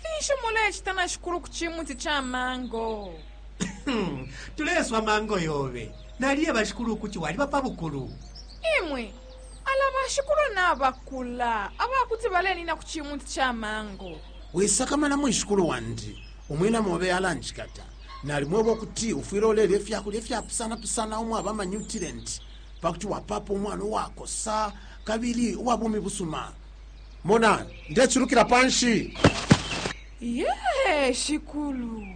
Finshi mulecita na shikulu ku cimuti ca mango? Tuleswa mango yobe. Naliye bashikulu ukuti waliba pa bukulu. Imwe, ala bashikulu nabakula, aba kuti balenina ku cimuti ca mango. Wisakamana mwishikulu wandi, umwina mobe alanjikata. Nalimweba ukuti ufwile ulelya ifya kulya ifyapusanapusana umwaba amanyutilenti pa kuti wapaapa umwana uwakosa kabili uwa bumi busuma. mona ndecilukila panshi ye shikulu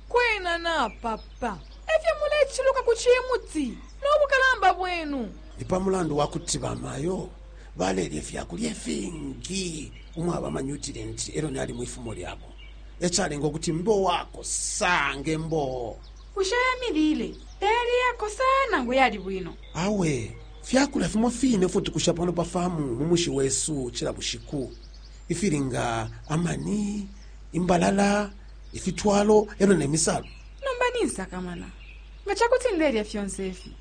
kwena napapa efyo muleciluka ku cimuti n'obukalamba bwenu ni pa mulandu wa kuti bamayo balelya ifyakulya ifingi umwaba amanyutirenti elo nali mu ifumo lyabo ecalenga ukuti mbe uwakosa ng'emboo bushe emilile teyali yakosa nangu yali bwino awe Fya kulya fimo fine ifyo tukusha pano pa farmu mu mushi wesu cila bushiku, ifili nga amani, imbalala, ifitwalo e lyo ne misalu. Nomba ninsakamana. Nga ca kuti ndelya fyonse ifi,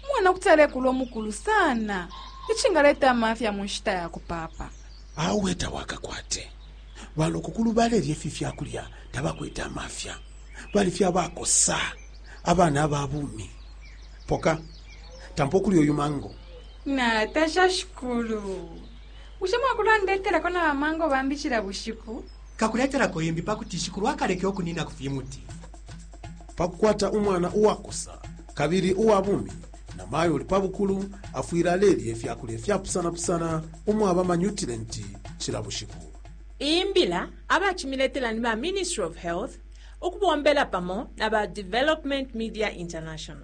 umwana kuti alekula umukulu sana icingaleta amafya mu nshita ya kupaapa. Awe tawakakwate. Balokokulu balelya ifi fya kulya tabakwete amafya, bali fye abakosa, abana aba bumi. Poka. tampa ukuli uyu mango natasha shikulu bushe mwakulandetelako na bamango bambi cila bushiku kakuletelako imbi pa kuti shikulu akaleke ukunina ku fimuti pa kukwata umwana uwakosa kabili uwa bumi na mayo uli pa bukulu afwile alelya ifya kulya fyapusanapusana umwaba manyutilenti cila bushiku iyi mbila abacimiletela ni ba ministry of health ukubombela pamo na ba development media international